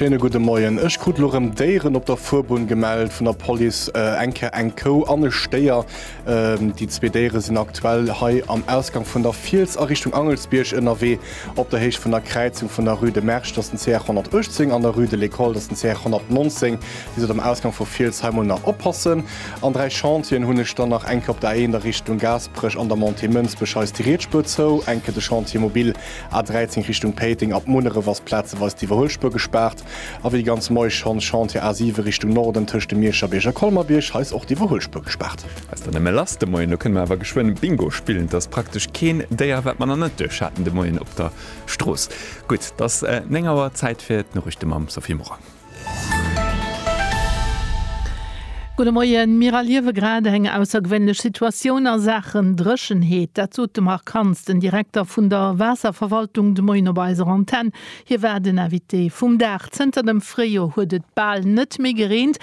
Schéine gudde Moien. Ech krut elo rëm Déieren op der Fuerbunn gemellt vun der Police. Eng Kéier eng Kou an e Stéier. Déi zwee Déiere sinn aktuell hei am Ausgang vun der Fiels a Richtung Angelsbierg ënnerwee. Op der Héicht vun der Kräizung vun der Rue de Mersch, dat ass den CR 118, an der Rue de l'École, dat ass den CR 119, déi sot am Ausgang vu Fiels, hei mol nach oppassen. An dräi Chantieren hunn ech dann nach, eng Kéier op der A1 a Richtung Gaasperech an der Montée Mënsbech, hei ass déi riets Spuer zou, eng Kéier de Chantier mobile A13 Richtung Péiteng ab Munneref ass plazeweis d'Iwwerhuelspuer gespaart. A wéi ganz Moie schonns, Chantier A7 Richtung Norden tëscht dem Miescherbierg a Colmer-Bierg, hei ass och d'Iwwerhuelspuer gespaart. Ass dann nëmme lass de Moien, elo kënne mer awer geschwënn Bingo spillen. Et ass praktesch keen Déier, wat mer nach net duerch haten de Moien op der Strooss. Gutt, et ass 9 Auer, Zäit fir d'Noriichte mam Sophie Morang. Gudde Moien, Mir erliewe grad eng aussergewéinlech Situatioun a Saachen Dréchenheet. Dat sot de Marc Hans, den Direkter vun der Waasserverwaltung, de Moien op eiser Antenn. Hie war den Invité vum Dag. Zënter dem Fréijoer huet et bal net méi gereent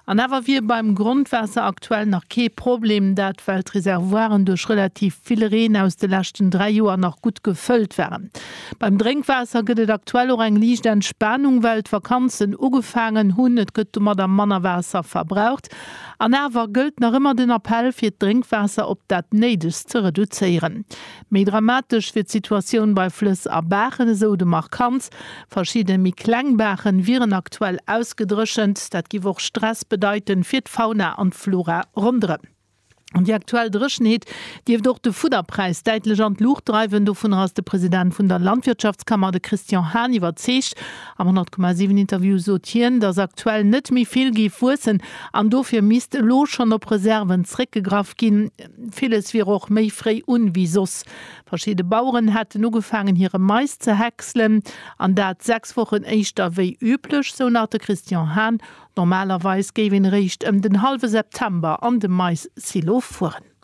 an awer wier beim Grondwaasser aktuell nach kee Problem dat, well d'Reservoiren duerch relativ vill Reen aus de leschten dräi Joer nach gutt gefëllt waren. Beim Drénkwaasser gëtt et aktuell och eng liicht Entspanung, well d'Vakanzen ugefaangen hunn. Et gëtt domadder manner Waasser verbraucht. An awer gëllt nach ëmmer den Appell, fir d'Drénkwaasser op dat Néidegst ze reduzéieren. Méi dramatesch wier d'Situatioun bei Flëss a Baachen, esou de Marc Kantz. Verschidde méi kleng Baache wieren aktuell ausgedréchent. Dat giff och Stress bedeiten, fir d'Fauna an d'Flora ronderëm. An déi aktuell Dréchenheet dierft och de Fudderpräis däitlech an d'Luucht dreiwen. Dovunner ass de President vun der Landwirtschaftskammer, de Christian Hahn, iwwerzeegt. Am 100,7 Interview sot hien, datt aktuell net méi vill géif wuessen an dofir misst elo schonn op Reserven zréckgegraff ginn. Villes wier och méi fréi un wéi soss. Verschidde Baueren hätten ugefaangen hire Mais ze häckselen an dat sechs Wochen éischter wéi üblech, sou nach de Christian Hahn. Normalerweis géif een eréischt ëm den hallwe September an de Mais-Silo fueren.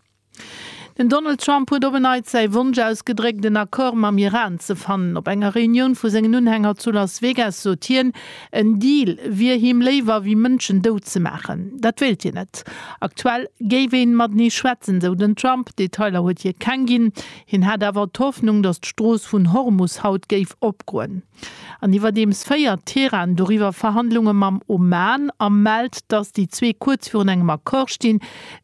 Den Donald Trump huet op en Neits säi Wonsch ausgedréckt, en Accord mam Iran ze fannen. Op enger Reunioun vu sengen Unhänger zu Las Vegas sot hien, en Deal wier him léiwer wéi Mënschen dout ze maachen. Dat wéilt hien net. Aktuell géif ee matenee schwätzen, sou den Trump. Detailer huet hie keng ginn. Hien hätt awer d'Hoffnung, datt d'Strooss vun Hormus haut géif opgoen. An iwwerdeems féiert Teheran doriwwer Verhandlunge mam Oman a mellt, datt déi zwee kuerz virun engem Accord stinn.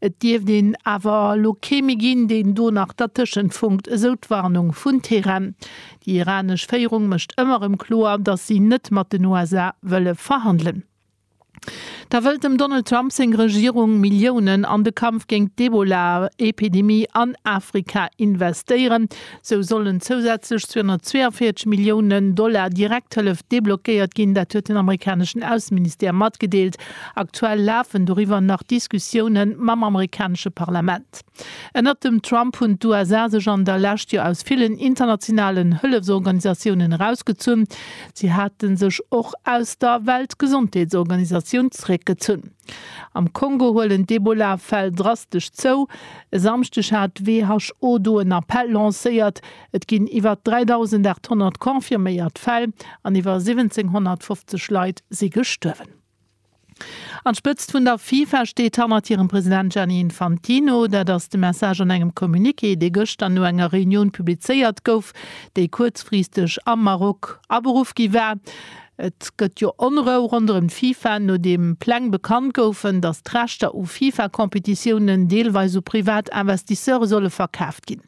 Et dierft een awer elo kee méi ginn, deen do nach dertëschent funkt, esou d'Warnung vun Teheran. Déi iranesch Féierung mécht ëmmer erëm kloer, datt si net mat den USA wëlle verhandelen. Da wëllt dem Donald Trump seng Regierung Milliounen an de Kampf géint d'Ebola-Epidemie an Afrika investéieren. Sou sollen zousätzlech 242 Milliounen Dollar Direkthëllef deblockéiert ginn. Dat huet den amerikaneschen Ausseministère matgedeelt. Aktuell lafen doriwwer nach Diskussioune mam amerikanesche Parlament. Ënnert dem Trump hunn d'USA sech an der Lescht jo aus villen internationalen Hëllefsorganisatiounen erausgezunn. Si hate sech och aus der Weltgesondheetsorganisatioun zeréckgezunn. Am Kongo huelen d'Ebola-Fäll drastesch zou. E Samschdeg hat d'WHO do en Appell lancéiert. Et ginn iwwer 3.800 confirméiert Fäll an iwwer 1.750 Leit si gestuerwen. An d'Spëtzt vun der FIFA steet hannert hirem President Gianni Infantino. Dat ass de Message an engem Communiqué, dee gëschter no enger Reunioun publizéiert gouf, déi kuerzfristeg am Maroc aberuff gi war. Et gëtt jo Onrou ronderëm d'FIFA, nodeem Pläng bekannt goufen, datt d'Rechter u FIFA-Competitiounen deelweis u privat Investisseure solle verkaaft ginn.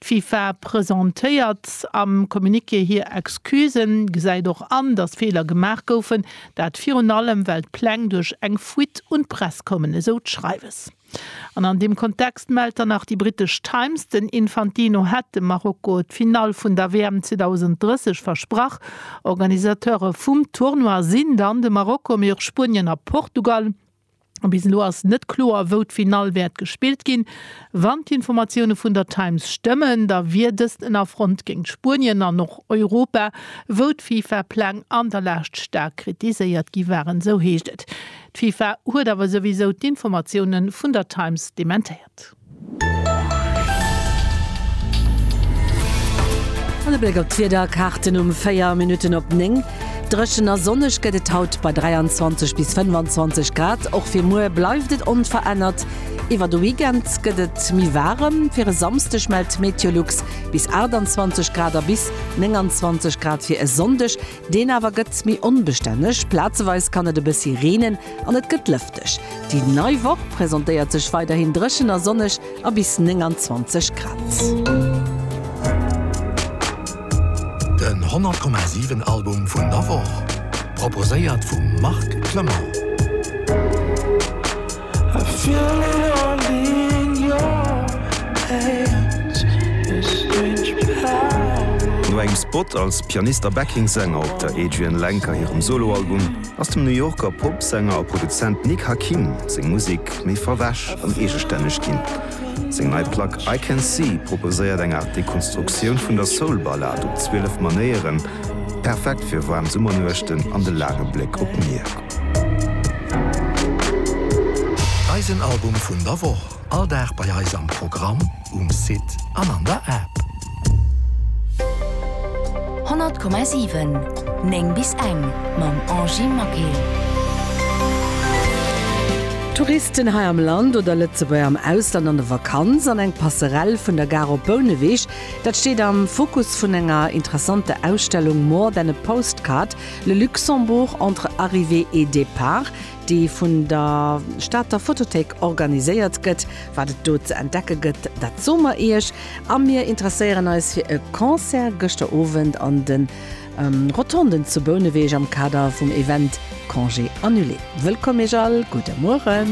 D'FIFA presentéiert am Communiqué hir Excusen, gesäit och an, datt Feeler gemaach goufen, Dat virun allem, well d'Pläng duerch eng Fuite un d'Press kommen, esou d'Schreiwes. An an deem Kontext mellt dann nach déi brittesch Times, den Infantino hätt dem Marokko d'Finall vun der WM 2030 versprach. Organisateure vum Tournoi sinn dann de Marokko, mee och Spuenien a Portugal. Bis elo ass net kloer, wou d'Finall wäert gespillt ginn. Wann d'Informatioune vun der Times stëmmen, da wier dëst en Affront géint Spuenien an och Europa, wou d'FIFA-Pläng an der Lescht staark kritiséiert gi waren, esou heescht et. D'FIFA huet awer souwisou d'Informatioune vun der Times dementéiert. An e Bléck op d'Wiederkaarten um 4 Minutten op 9. Dréchen a sonneg gëtt et haut bei 23 bis 25 Grad. Och fir muer bleift et onverännert. Iwwer de Weekend gëtt et méi waarem. Fir e Samsdeg mellt Meteolux bis 28 Grad a bis 29 Grad fir e Sonndeg. Deen awer gëtt méi onbestänneg, plazeweis kann et e bëssi reenen an et gëtt lëfteg. Déi nei Woch presentéiert sech weiderhin dréchen a sonneg a bis 29 Grad. Den 100,7 Album vun der Woch proposéiert vum Marc Clement. No engem Spot als Pianist a Backing-Sänger op der Adrianne Lenker hirem Solo-Album ass dem New Yorker Pop-Sänger a Produzent Nick Hakim seng Musek méi verwäsch an eegestänneg ginn. Seng nei Plack I Can See proposéiert eng Aart Dekonstruktioun vun der Soul-Ballad op 12 Manéieren, perfekt fir waarm Summernuechten an de laange Bléck op d'Mier. Eisen Album vun der Woch, all Dag bei eis am Programm, um Site an an der App. 100,7 9 bis eng mam Angy Maquet. Touristen hei am Land oder Lëtzebuerger am Ausland an der Vakanz an eng Passerelle vun der Gare op Bouneweg, dat steet am Fokus vun enger interessanter Ausstellung More than a postcard, Le Luxembourg entre arrivée et départ, dee vun der Stater Photothéik organiséiert gëtt. Wat et do ze entdecke gëtt, dat soe mer Iech. A mir interesséieren eis fir e Concert gëschter Owend an de Rotonden zu Bouneweg am Kader vum Event Congé annulé. Wëllkomm Iech all, gudde Mueren.